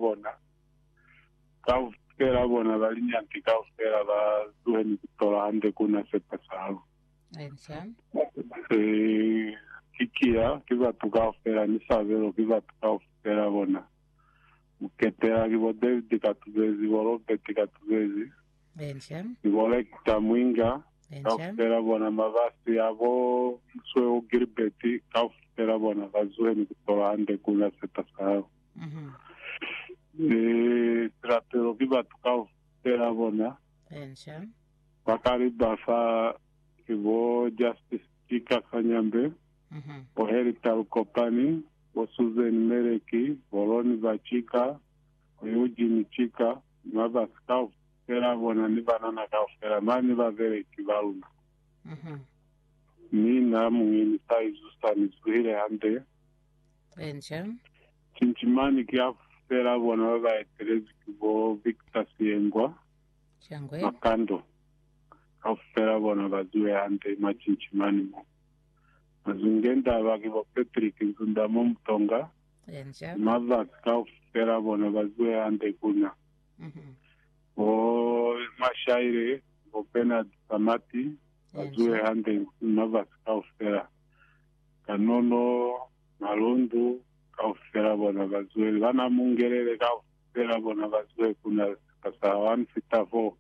bona, kaufela bona ba linyanti kaufela ba zuhe ni kutola hande ku na sepasalo. Eh, ki kiya, ki batu kaufela, ni sabelo ki batu kaufela bona. Muketela ki bo David Katubezi, bo Robert Katubezi, ni bo Lecter Mwinga, kaufela bona mabasi ya bo Msweu Gilbert, kaufela bona ba zuhe ni kutola hande ku na sepasalo. Mhm. Ni silapelo ki batu kaufela bona Enca. ba kali ba fa ki bo Justice Chika Kanyambe, Mhm. bo Harry Talukopani, bo Susan Meleki, bo Ronnie Bachika, bo Eugene Chika, ni ba basi kaufela bona ni banana kaufela mane ba beleki ba luna. Mhm. Mi na muñi ni sa izusa ni zuhile hande. Enca. Cinci mane ki ya fela bona ba ba etelezwi ki bo Victor Siyengwa, Cangwe. Makando. Kaufela bona ba ziwe hande mwa cinci mane mo. Mazungendaba ki bo Patrick Nzundamo Mutonga, Enca. ni Mavasi kaufela bona ba ziwe hande ku na. Mhm. Bo Mashaile ni bo Bernard Samati ba ziwe Enca. hande ni Mavasi kaufela. Kanono, malundu kaufela bona bazwele, bana mungelele kaufela bona bazwele kuna sika sa 1 fita 4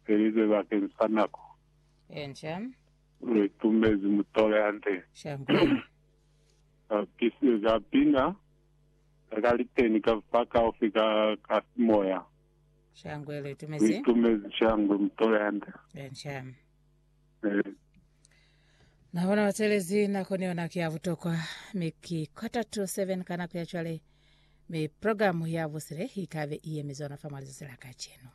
felizwe bakeng sa nako. Enca. Re tumezi mutole hande. Shangwe. Ka pisi, ka pina, ka kaliteni, ka fa kaufi ka, ka simoya. Shangwe, re tumezi. Re tumezi shangwe mutole hande. Enca. Nabona batelezi nako ni yona ke ya butokwa mi ki quarter to seven ka nako ya cwale mi programu ya busile ikabe i yemizona fa mwa lizatsi la kacenu